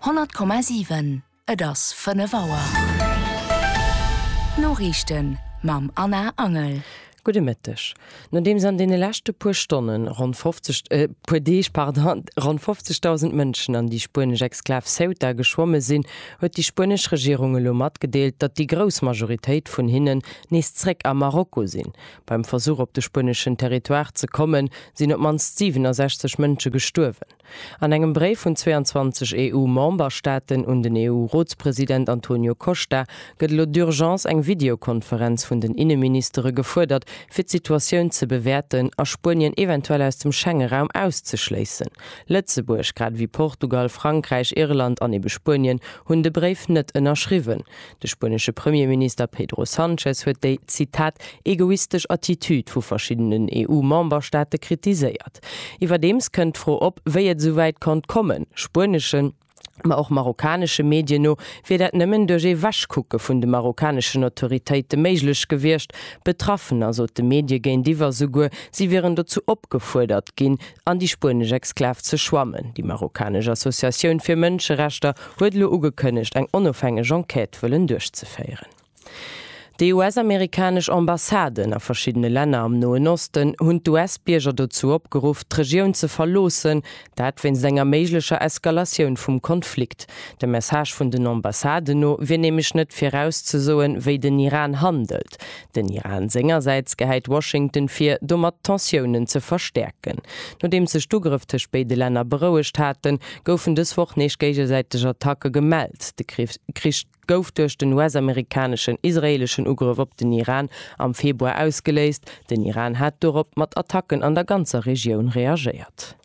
100,7 Et ass 5 Auer. D'Noriichten mam Anna Angel. Gudde Mëtteg. Nodeems an deene leschte puer Stonne ronn 50, puer Deeg, pardon, ronn 50.000 Mënschen an déi spuenesch Exklav Ceuta geschwomme sinn, huet déi spuenesch Regierung elo matgedeelt, datt déi grouss Majoritéit vun hinnen nees zréck a Marokko sinn. Beim Versuch op de spueneschen Territoire ze kommen, sinn op d'mannst 67 Mënsche gestuerwen. An engem Bréif vun 22 EU-Memberstaaten un den EU-Rotspresident Antonio Costa gëtt elo d'Urgence, eng Videokonferenz vun den Inneministere gefuerdert, fir d'Situatioun ze bewäerten a Spuenien eventuell aus dem Schengeraum auszeschléissen. Lëtzebuerg, grad ewéi Portugal, Frankräich, Irland an ebe Spuenien, hunn de Bréif net ënnerschriwwen. De spuenesche Premierminister Pedro Sanchez huet déi, Zitat, egoistesch Attitüd vu verschiddenen EU-Memberstaate kritiséiert. Iwwerdeems kënnt d'Fro op, wéi et esou wäit konnt kommen. Spueneschen, ma och marokkanesche Medien no, wier dat nëmmen duerch ee Wegkucke vun de marokkaneschen Autoritéite méiglech gewiescht. Betraffener sote Medie géintiwwer souguer, si wieren dozou opgefuerdert ginn, an déi spuenesch Exklav ze schwammen. Déi marokkanesch Associatioun fir Mënscherechter huet elo ugekënnegt, eng onofhängeg Enquête wëllen duerchzeféieren. Déi US-amerikanesch Ambassaden a verschiddene Länner am Noen Osten hunn d'US-Bierger dozou opgeruff, d'Regioun ze verloossen, dat wéinst enger méiglecher Eskalatioun vum Konflikt. Dem Message vun den Ambassaden no wier nämlech net virauszesoen, wéi den Iran handelt. Den Iran sengersäits gehäit Washington vir, domat d'Tensiounen ze verstäerken. Nodeems sech d'Ugrëff tëscht béide Länner berouegt haten, goufen dës Woch nees géigesäiteg Attacke gemellt. De Krich gouf duerch den US-amerikaneschen, israeeleschen Ugrëff op den Iran am Februar ausgeléist. Den Iran hat dorop mat Attacken an der ganzer Regioun reagéiert.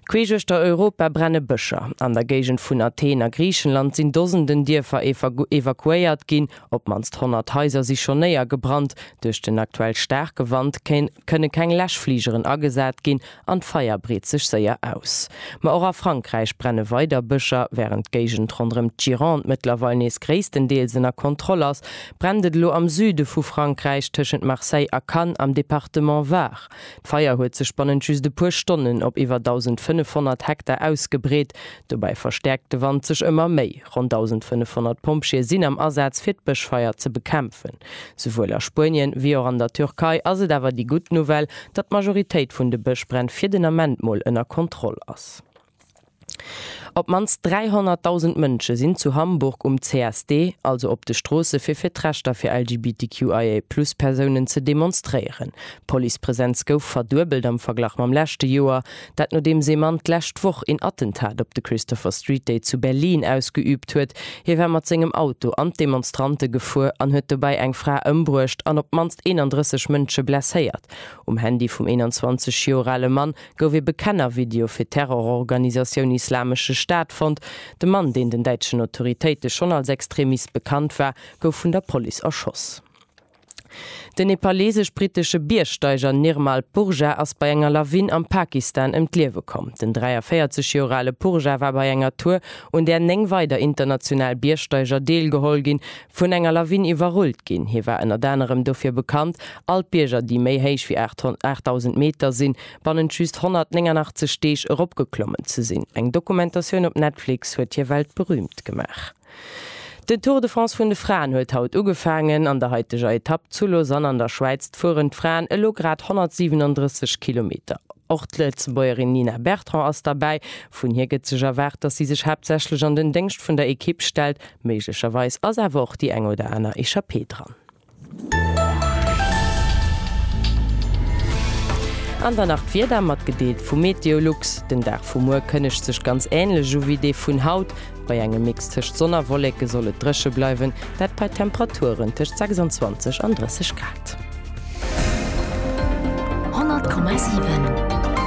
Queesch uechter Europa brenne Bëscher. An der Géigend vun Athen a Griichenland sinn Dosenden Dierfer evakuéiert ginn. Op d'mannst 100 Haiser si schonn néiergebrannt. Duerch den aktuell staarke Wand kënne keng Läschfligeren agesat ginn an d'Feier breet sech séier aus. Ma och a Frankräich brenne weider Bëscher. Wärend d'Géigend ronderëm d'Gironde mëttlerweil nees gréisstendeels ënner Kontroll ass, brennt et elo am Süde vu Frankräich, tëschent Marseille a Cannes am Departement Var. D'Feier huet sech bannent just e puer Stonnen op iwwer 1.500 Hektar ausgebreet. Dobäi verstäerkt de Wand sech ëmmer méi. Ronn 1.500 Pompjeeë sinn am Asaz, fir d'Bëschfeier ze bekämpfen. Souwuel a Spuenien, ewéi och an der Türkei ass et awer déi gutt Nouvelle, datt d'Majoritéit vun de Bëschbränn fir den Ament mol ënner Kontroll ass. Op d'mannst 300.000 Mënsche sinn zu Hamburg um CSD, also op de Stroosse fir fir d'Rechter fir LGBTQIA+ Persounen ze demonstréieren. D'Policepresenz gouf verduebelt am Verglach mam leschte Joer, dat nodeems ee Mann d'lescht Woch een Attentat op de Christopher Street Day zu Berlin ausgeüübt huet. Hie war mat sengem Auto an d'Demonstrante gefuer an huet dobäi eng Fra ëmbruecht an op d'mannst 31 Mënsche blesséiert. Um Handy vum 21 Joer ale Mann gouf ee Bekennervideo fir d'Terrororganisatioun Islamesche Staat fonnt. De Mann, deen den däitschen Autoritéite schonn als Extremist bekannt war, gouf vun der Police erschoss. Den nepaleesesch-brittesche Biergsteiger Nirmal Purja ass bei enger Lawin am Pakistan ëm d'Liewe komm. Den 43 Joer ale Purja war bei enger Tour, un där néng weider international Biergsteiger deelgeholl ginn, vun enger Lawin iwwerrullt ginn. Hie war ënnert anerem dofir bekannt, all d'Bierger, déi méi héich wéi 8.000 Meter sinn, bannent just 189 Deeg eropgeklommen ze sinn. Eng Dokumentatioun op Netflix huet hie weltberüümt gemaach. Den Tour de France vun de Fraen huet haut ugefaangen. An der haiteger Etapp zu Lausanne an der Schwäiz fueren d'Fraen elo grad 137 Kilometer. Och d'Lëtzebuergerin Nina Bertrand ass derbäi. Vun hir gëtt sech erwaart, dass si sech haaptsächlech an den Déngscht vun der Ekipp stellt. Méiglecherweis ass awer och déi eng oder aner Echappée dran. An dann nach d'Wieder, matgedeelt vu Meteolux. Den Dag vu muer kënnegt sech ganz änlech u wéi dee vun haut. Bei engem Mix tëscht Sonn a Wolleke soll et dréche bleiwen, dat bei Temperaturen tëscht 26 an 30 Grad. 100,7.